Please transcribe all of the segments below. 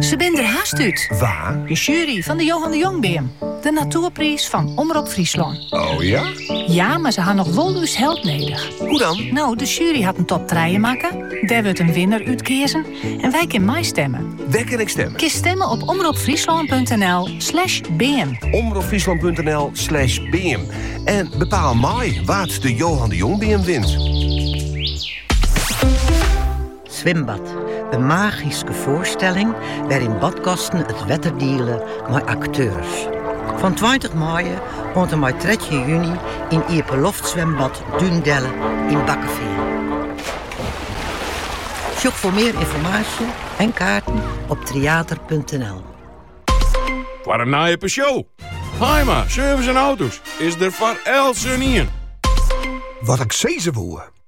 Se binne der hast út. Wa? De sjuery fan de Johan de Jongbeam. De natoerpriis fan Omrop Fryslân. O ja? Ja, mar se ha noch wol ús help nedich. Hoe dan? No, de sjuery hat in top trije makke. Dêr wurdt in winner útkeazen. En wy kinne meistimme. Wêr kin ik stimme? Kinst stimme op omropfryslân.nl slash beam. Omropfryslân.nl slash beam. En bepaal mei wa't de Johan de Jongbeam wint. Swimbad, in magyske foarstelling wêryn badgasten it wetter diele mei akteurs. Fan tweintich maaie oant en mei trettjin juny yn iepenloftswimbad Dúndelle yn Bakkefean. Sjoch foar mear ynformaasje en kaarten op tryater.nl. Foar in nije Peugeot, Haaima Service en Auto's is der foar eltsenien. Wat ik sizze woe.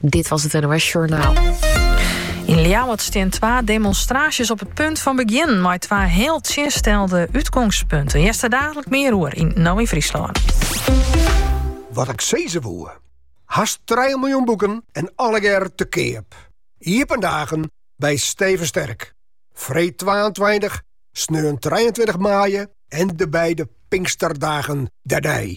Dit was het NOS Journaal. Yn Ljouwert steane twa demonstraasjes op it punt fan begjinnen, mei twa hiel tsjinstelde útgongspunten. Hearst der dalik mear oer yn No yn Fryslân. Wat ik sizze woe. Hast 3 miljoen boeken en allegear te keap. Iepen dagen by Steven Sterk. Freed 22, sneon 23 maaie en de beide pinksterdagen derby.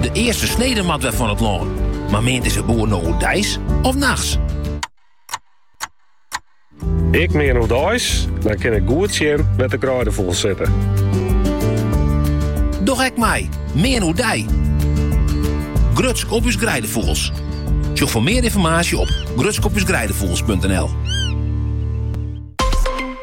De earste snede moat wer fan it lân. Mar meant dizze boer no oerdeis of nachts? Ik mean oerdeis, dan kin ik goed sjen wêr't de greidefûgels sitte. Doch ek mei, mean oerdei. Grutsk op ús greidefûgels. Sjoch foar mear ynformaasje op grutskopusgreidefugels.nl